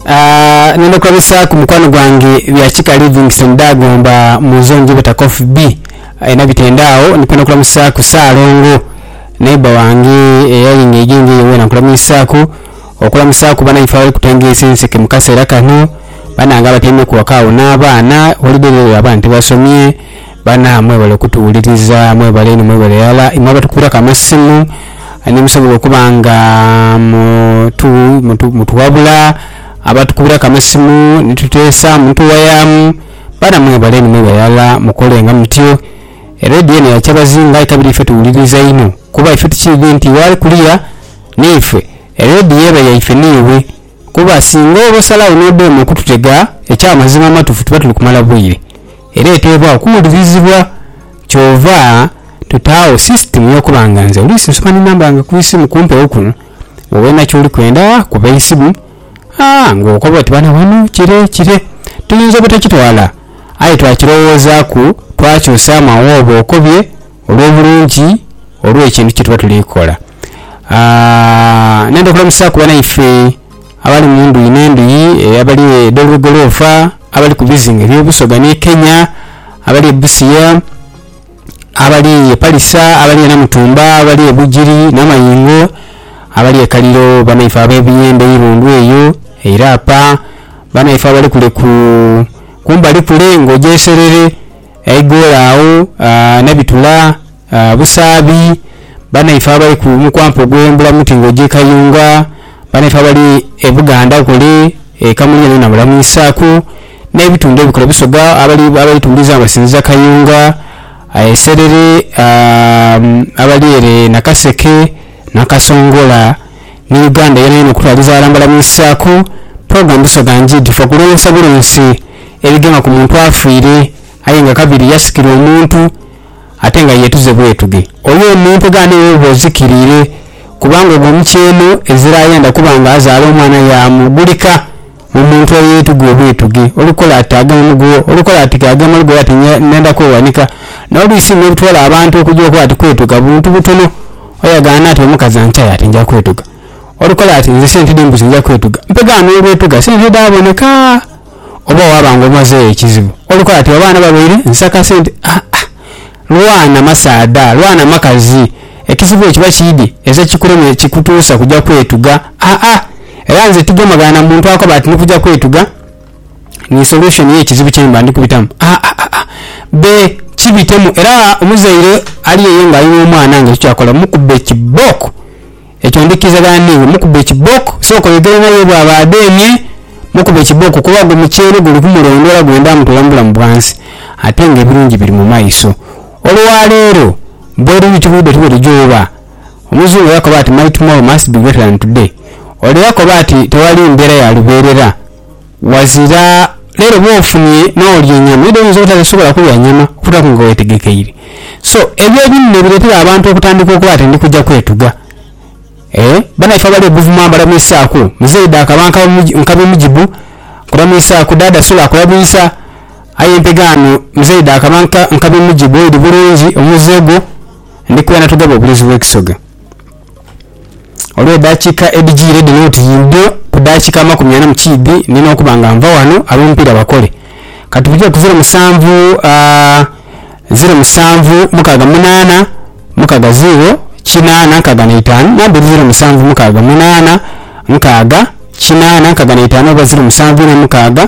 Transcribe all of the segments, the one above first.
Aah nenda okubabisaaku mukwano gwange bya kika Livingstone Dagomba mu zone gye beta Coffee B alina bitende agho. Ndi kwenda okulamusaaku Ssaalongo neighbour wange eyali nga aidha engo eyo weena nkulamiisaaku. Okulamusaaku banaife abali kutengeesa enseke mu kaseera kano banange abatyaimeku ghaka agho n'abaana holiday dheedho abaana tibasomye. Bana mwebale okutuwuliriza mwebale inho mwebale irala imwe abatukubilaku amasimu nimusobola okuba nga mutuwabula abatukubilaku amasimu nitutesamu nituwayamu bana mwebale inho mwebale irala mukolenga mutyo eredio eno yakyabazinga aye kabiri ife tuwuliriza inho kuba ife tukiidhi nti ghali kuliya niife eredio eba yaife niiwe kuba singa oba osalagho nodema okututega ekyamazima amatufu tuba tuli kumala bwire. Era eteebwa okuwulirizibwa. Kyova tutaagho sisitimu y'okuba nga nze oluusi nsobola ni namba yange ku isimu kumpewo kuno, wowe na ky'oli kwenda kuba eisimu aa ng'okoba oti bana ghano kire kire. Tuyinza obutakitwala, aye twakirowoozaaku twakyusaamu agho oba okobye olw'obulungi olw'ekintu kye tuba tuli kola. Aa, ndenda okulamusaaku banaife. Abali mu ndhuyi n'endhuyi, abali edh'olwegoloofa, abali ku bizinga eby'obusoga ni Kenya, abali e Busia, abali e Palisa, abali e Namutumba, abali e Bugiri n'amayingo, abali e Kaliro, banaife ab'ebiyembe eirundu eyo e Irapa, banaife abali kule ku kumbali kule ng'oja e Serere. eighoolo agho nhe bitula busaabi, banaife abali ku mukwampa gwe mbula muti nga oja e Kayunga, banaife abali e Buganda kule e Kamulye nho nabula mwisaku nhe bitundhu ebikulu e Busoga abali tundiza nga basinziza Kayunga aye serere aa abali ere Nakaseke, Nakasongola. ni Uganda yonayona okutwaliza aghalala nga bamwisizaku Program Busoga Njid for kulonsa bulonsi ebigema ku muntu afiire aye nga kabiri yasikirwa omuntu ate nga yetuze bwetuge. Oyo omuntu egaane eyo oba ozikiriire kubanga ogwo mukyeeno ezira ayenda kuba nga azaala omwana yaamu gulika. Omuntu eyeetuga obwetuge, olukola ati agema mu gugho, olukola ati ke agema lugogho ati ndenda kweghanika. N'oluusi bino ebitwala abantu okugya okola ati kwetuga buntu butono. Aye agamba ati omukazi ankyaye ati nja kwetuga. Olukola ati nze sente dh'embuzi nja kwetuga. Mpegha n'olwetuga sente dhaaboneka oba waaba ng'omazeegho ekizibu. Olukola ati abaana babaire nsaka sente. Aa, lwana masaadha, lwana makazi. Ekizibu ekiba kiidhi eeze kikuleme kikutuusa kuja kwetuga? Aa. Era nze tigemagana na muntu akoba ati ni kuja kwetuga ni solution ye kizibu kye mba ndi kubitamu. Aa-aa-aa. Be kibitemu era omuzaire ali eyo nga ali n'omwana nga ekyo kyakola mukubbe kibooko. Ekyo ndhikirizagana n'iwe. Mukubbe kibooko. Sooka oyogere naye bwaba adheemye, mukubbe kibooko kuba gwo muceere guli kumulondoola gwenda mutoola mu bulamu bwansi ate nga ebirungi biri mu maiso. Olwaleero bweruli tibwidho tibwerija oba. Omuzungu yakoba ati my tomorrow must be greater than today ore yakoba ati tewali mbeera ya lubeerera wazira leero bwofunye n'olya enyama eidha oyinza obutadha sobola kulya nyama okutaku nga wetegekeire so ebyo ebinene biretera abantu okutandika okuba ati ndikuja kwetuga eeh banaife abali ebuvuma mbalamwisaku muzeyi daaka banka nkabimujibu nkulamwisaku daada sula akulabwisa Aye empegaano Muzei dhaakaba nka nkabi mu gibo eri bulungi omuze gwo, ndi kwena tugaba obulesu bw'ekisoga. Olw'edhakiika edhijiire dhino oti yimbyo ku daakiika amakumi ana mu kiidhi nina okuba nga nva ghano ab'omupiira bakole. Ka tubitire ku ziro musanvu, aah, ziro musanvu, mukaaga munaana, mukaaga ziiro, kinaana, nkaaga na itaanu, namba eri ziro musanvu, mukaaga munaana, nkaaga, kinaana, nkaaga na itaanu oba ziro musanvu ina mukaaga.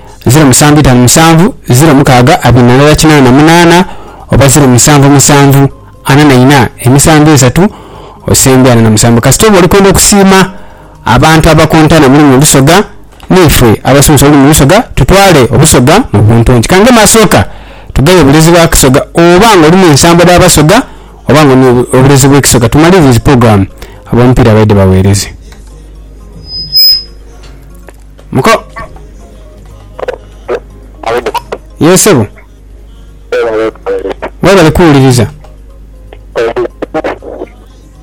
ziro musanvu itanu musanvu ziro mukaaga abiri na ndala kinaana na munaana oba ziro musanvu musanvu ana na ina emisanvu esatu osembye ana na musanvu kasita oba oli kwenda okusiima abantu abakontana muli mu Busoga neife abasomesa olulimi Lusoga tutwale Obusoga mu buntungi ka ngema asooka tugaye obulezi bwa Kisoga oba nga olina ensambwa dha Basoga oba nga olina obulezi bwe Kisoga tumalirize programme abomupiira baidhe baweereze. Muko. Ye sebo. Webale kuwuliriza.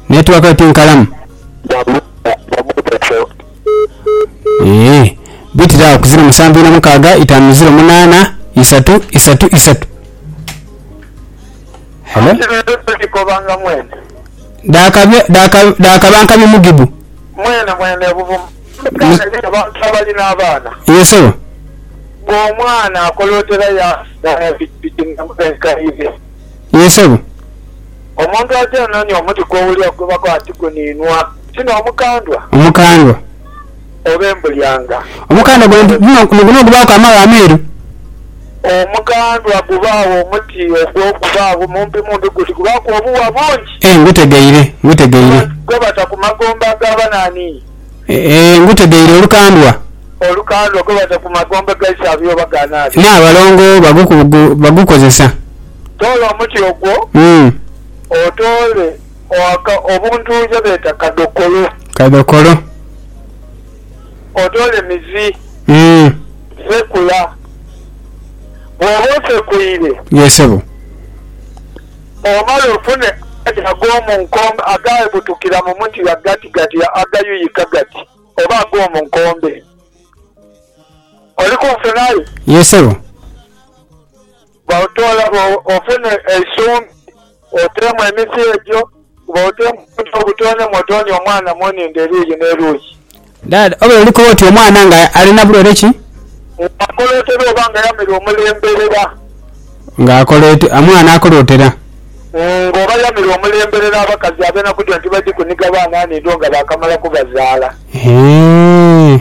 Network yo tinkalamu. Eeh. Bitira agho ku ziro musanvu ina mukaaga itaanu ziro munaana isatu isatu isatu. Hello. Daka daka daka bankabye mugibu. Omukyala yenha abantu abalina abaana. Yee sebo. Ng'omwana akolootera yaafuna ya pikipiki n'emuba enkaire. Yee sebo. Omuntu aja anoonia omuti kw'owulira kugobako ati guniinwa, ti n'omukandwa. Omukandwa. Oba embulyanga. Omukandwa gwa nti guno guno gubaaku amaghagha ameeru. Omukandwa gubaagho omuti ogwo gubaagho mumpi mumpi guti gubaaku obuwa bungi. Ee ngutegeire, ngutegeire. Gwebata ku magombe ag'abanaani. Ee, ngutegeire olukandwa. Olukandwa gwebata ku magombe gaise abe oba ga naabye. N'abalongo bagukozesa. Toola omuti ogwo, otoole obuntu ye beeta kadhokolo. Kadhokolo. Otoole mizi. Sekula. Bw'oba osekuire. Yee sebo. Bw'omala ofune amaadhi ag'omu nkombe agaabutukira mu muti ghagatigati agayuyika gati oba ag'omu nkombe. Oli kunfunayo? Yee, ssebo. Bw'otoola ofune eisumbi oteemu emiti egyo. Kuba otoonye butoonye mw'otoonye omwana mu nhindo eruuyi n'eruuyi. Dad, obeera oli kuba oti omwana nga alina bulwaire ki? Nga akolootera oba nga yamera omulemberera? Nga akolootera, omwana akolootera. Nga oba yamera omulemberera abakazi ab'enaku dhino tibadhi kuniga baana nhindo nga baakamala kubazaala. Eeh.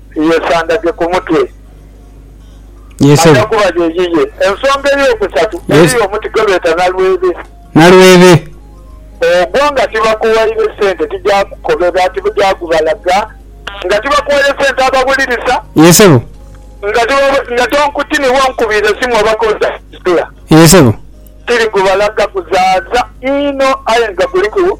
Yeesandage ku mutwe. Yee ssebo. Aja kuba ye yiye. Ensonga ey'okusatu, eriyo omuti gwe beeta nalwebe. Nalwebe. Ogwo nga tibakuwaire sente tijaakukobera, tijaakubalaga. Nga tibakuwaire sente abawulirisa. Yee ssebo. Nga tiba, nga tonkutini iwe onkubiire esimu oba k'oja kuzisula. Yee ssebo. Tirikubalaga, kuzaaza inho aye nga kuliku.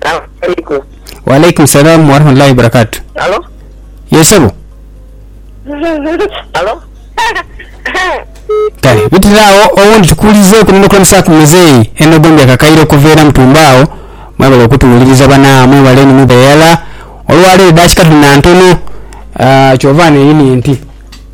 Assalamualaikum. Waalaikum salam warahmatullahi wabarakatu. Halo? Ye sebo. Halo? Kale bitira awo owundi tukuwulizeeku n'okulemesa ku muzeeyi eno gombi akakaire okuva era mutumbe awo. Mwebale okutuwuliriza bana mwebale ni mwebale irala. Olwaleero edakika tuli na ntono kyova neeyini nti.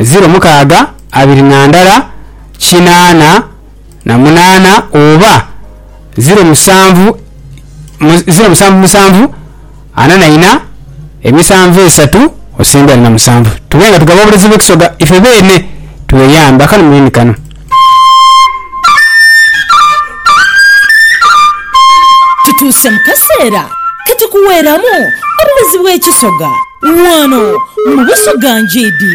ziro mukaaga abiri na ndala kinaana na munaana oba ziro musanvu ziro musanvu musanvu ana na ina emisanvu esatu osembeire na musanvu tube nga tugaba obulezibu Ekisoga ife beene tweyambe akanu mwene kano. Tutuuse mu kaseera ke tukuweeramu obuwezi bw'ekisoga ghano mu Busoga Ngiidi.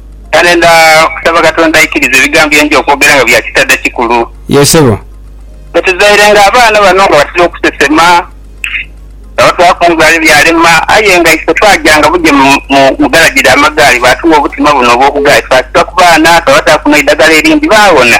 Kale nda kusaba Katonda aikirize ebigambo bye nja okwogera nga bya kitadha kikulu. Yee sebo. Bwe tuzairenga abaana bano nga batera okusesema, nga batwaaku omughala ebyalema, aye nga ife twajanga buja mu mu galagi dha magaali baatugha obutima buno obw'obugaali twasiba ku baana twabataaku n'eidagala erindi baawona.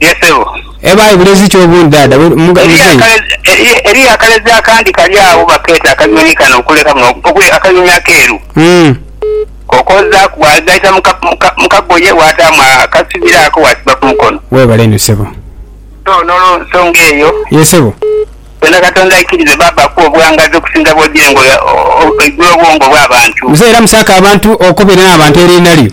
Ye sebo. Eba aye bulezi ki obundi dada we muzeyi. Eriyo akalezi akandi kali agho bakeeta akanyonyi kano okuleka buno okuli akanyonyi akeeru kokoozaaku bwagaita mu kagoye waataamu akasibiro ako waasiba ku mukono. Weebale inho sebo. So n'olwo nsonga eyo. Ye sebo. Tonda Katonda aikirize baaba akuwe obughangaazi okusinga bw'ogira engo oigula obwongo bw'abantu. Muzeyi era musaake abantu okobere n'abantu eriina lyo.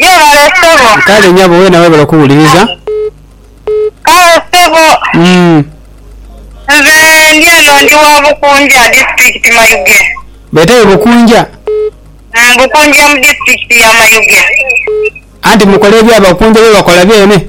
Gyebale ssebo. Kale nyabo wena webale okuwuliriza. Kale ssebo. Uhmm. Nze ndi eno ndi wa Bukunja disitulikiti Mayuge. Betayo Bukunja? Uhmm Bukunja mu disitulikiti ya Mayuge. Anti mukola ebya Bakunja byebakola byene?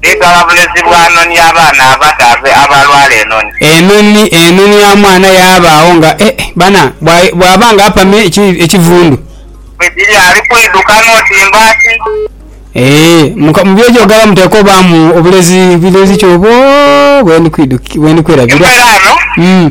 Bigala bulezi bwa noni abaana abadhaadhe abalwala enoni. Enoni enoni ya mwana yabaagho nga e bana bwa bwaba nga apame eki ekivundu. Bwe giri ali kwidhuka n'oti mbaati. Ee muka mu byojoogera muteekwa obaamu obulezi bulezi ki obwo bwe ndi kwidhuki bwe ndi kwerabira? Emperaano. Umm.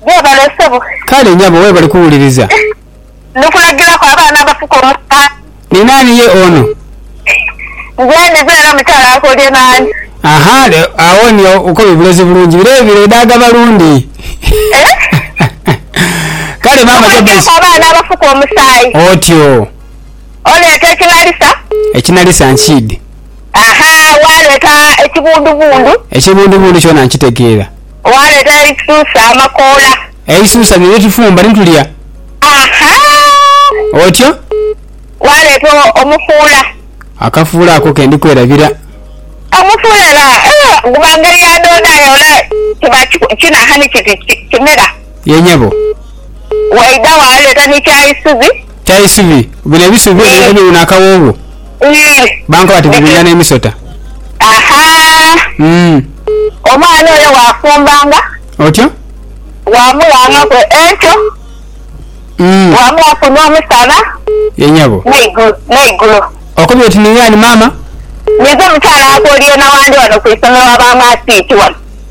gwebale sebo. Kale nyabo webale kuwuliriza. Ndikulagilaku abaana abafuka omusaala. Ni naani ye ono? Nze ndize era mukyala akolie naani? Ahaa le agho ni okobye bulezi bulungi bire ebire edaaga balundi Kale maama Jobbes. Ndikulagilaku abaana abafuka omusaayi. Otyo. Oleeta ekinalisa. Ekinalisa nkiidhi. Ahaa waleeta ekibundubundu. Ekibundubundu kyona nkitegeera. Waaleeta eisusa, amakoola. Eisusa lye lyetufumba ni tulya. Ahaa. Otyo. Waaleeta omufuula. Akafuula ako ke ndi kwerabira. Omufuula era guba ngeri ya doodo aye ole kiba kinaha ni kiti kimera. Yee nyabo. Waidha waaleeta ni kyaisubi. Kya isubi, bino ebisubi byona biba biwuuna akawoowo. Bankoba bati biwunya n'emisota. Omwana oyo waafumbanga. Otyo. Waamughangaku enkyo. Waamughaku n'omusana. Ye nyabo. N'eigulo. Okobye oti ningaani maama? Ninze mukyala waakwo Oryena wandi wano ku isomero wa ba Maasiiti wano.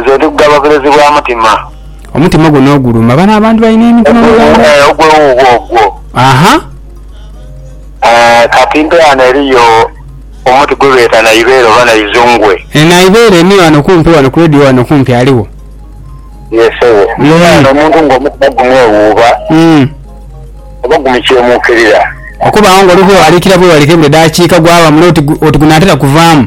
Nze ndi kugaba bulezi bwa mutima. Omutima gwo n'oguluma. Bano abantu balina emitima mu Uganda. Ogwo, eh, ogwo wuuwo ogwo. Aha. Eh, kati mpe ghano eriyo omuti gwe beeta Naibeere oba Naizungwe. E Naibeere ni ghano kumpi ghano ku radio ghano kumpi aligho. Ye ssebo. Mm. Mpe ghano omuntu ng'omutima gumwewuuba Mm. oba gumukyemuukirira. Okubaawo ng'oli bwewaliikira bwewaliikire buli daakiika gwaba mule oti gu- oti gunaatera kuvaamu.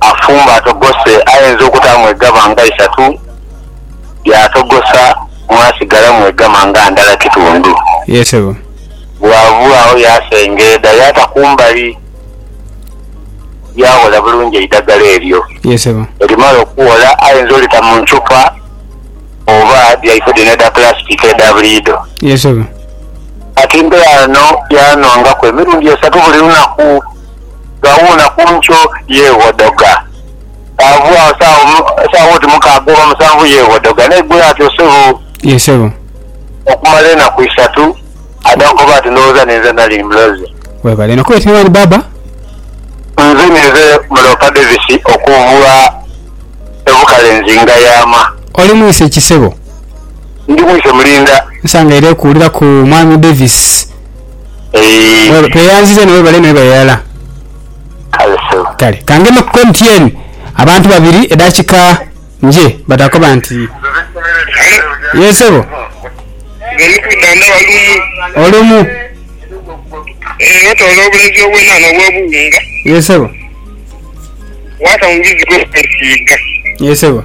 Afumba atogose ayenza okutaamu egama nga isatu, yaatogosa mwasigalamu egama nga ndala kitundu. Ye sebo. Bw'ava agho yaasengeeda yaata ku mbali, yaaghola bulungi eidhagala eryo. Ye sebo. Bwerimala okughola ayenza olita mu nthupa oba dhaife dhino edha pulasitiki edha buliidho. Ye sebo. Kati mbe ghano yaanhongaku emirundi esatu buli lunaku. ghawuuna ku nkyo yeeghodoga. Bw'aghua saawa oti mukaaga oba musanvu yeeghodoga n'aigula ati, Osebo! Ye sebo. Okumala enaku isatu adha kukoba ati, Ndhowooza ninze nali muloze. Webale inho kwetebwa Ali Baba. Nze ninze Muloopa Davis okuva e Bukalenzi Ngayama. Oli mwise ki sebo? Ndi mwise Mulinda. Nsangaire kuwulira ku Mwami Davis. Eeh. Tweyanziza inho webale mwebale irala. Kale sebo. Kale kangeme ku MTN abantu babiri edakika nje batakoba nti Yes sebo. Olumu. Yes sebo. Yes sebo.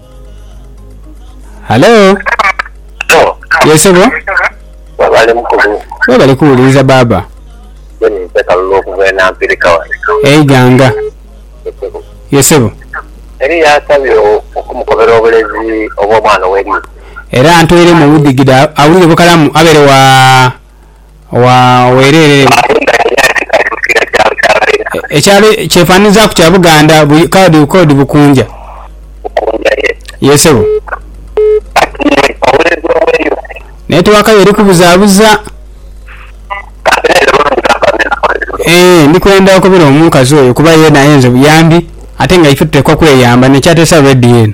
Halo? Halo? Ye sebo? Webale mukulu. Webale kuwuliriza baaba. Nze ninze Kalulu okuva e Nampirika wano. E Iganga? Ye sebo. Ye sebo. Eriyo asabye okumukobera obulezi obw'omwana ow'eriiso? Era antoiremu obudhigidha awulire bukalamu abeere wa? Wa wereere mu. Amayumba gano yaali tikali mu kiira kyalo kya Baira. Ekyali kyefananizaaku kya Buganda bu kadi kodi Bukunja. Bukunja, ye. Ye sebo. Kati iwe oweereza oweeyo ki? Netiwaka yo eri kubuzaabuza. Kati naye era olwo nigamba mbe nakola ki luno? Eeh, ndi kwenda okubira omukazi oyo kuba yeena ayenze buyambi ate nga ife tuteekwa kweyamba, n'ekyateesa rediyo eno.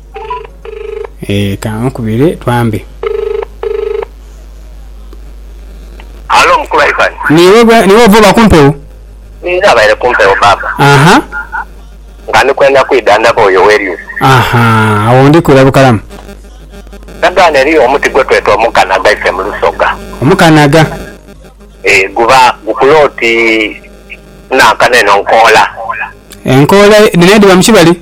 Eeh kankubire twambe. Halo mukulu Ivan. Niiwe gwe niiwe ova oba kumpewo? Ninze abaire kumpewo baaba. Aha. Nga ndi kwenda kwidha ndaba oyo Werius. Aha awo ndi kwira bukalamu. Ndagaano eriyo omuti gwetweta omukanaga ife mu lusoga. Omukanaga. Eeh guba gukula oti nankano eno nkoola. Enkoola dhino edhiba mu kibali?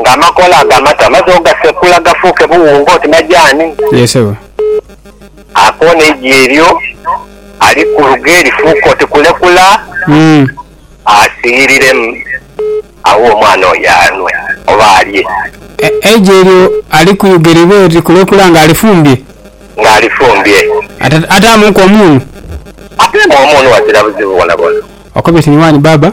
nga amakoola ago amato amaze ogasekula gafuuke buwunga oti majaani. Yee sebo. Akoona eigi eryo ali ku luge lifuuke oti kulekula, asiiyiriremu, aghe omwana oyo anwe oba alye. Eigi eryo ali ku luge libe oti kulekula nga alifumbye? Nga alifumbye. Ate ataamuuku omunhu? Ateemu omunhu ghazira buzibu bwonabwona. Okobye ti ni waani baaba?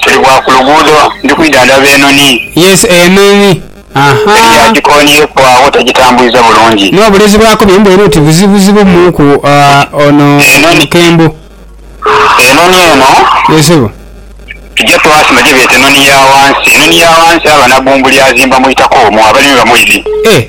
Tuli bwa ku luguudo ndi kwidha ndaba enhonhi. Yes, enhonhi, aha. Eri yagikonhyeku agho tagitambwiza bulungi. N'obulezi bwaku bye mbweru oti buzibuzibu muuku ono omukembo. Enhonhi eno. Ye sebo. Tugya twasima gye beeta enhonhi ya wansi. Enhonhi ya wansi aba na bbumbu ly'azimba mu itaka omwo abalimi bamuidhi. Eh!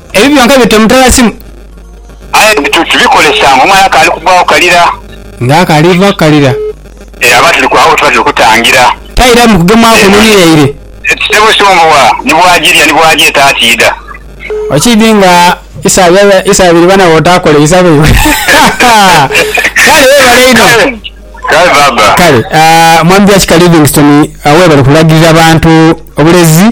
Ebyo byonka bita omutala simu. Aye bituuti bikolesa nga omwana akaali kugwagho kalira. Nga akaali vaaku kalira. Eyo aba tuli kwagho wetuba tuli kutangira. Taira mu kugemwaku enhonhi yaire. Ssebo Sombowa ni bwagirya ni bwagyeta atiidha. Okiidhi nga isa abiri bana bwotaakola isa lwaibwe. Kale webale inho. Kale baaba. Kale Mwami Byakika Livingstone webale kulagirira bantu bulezi.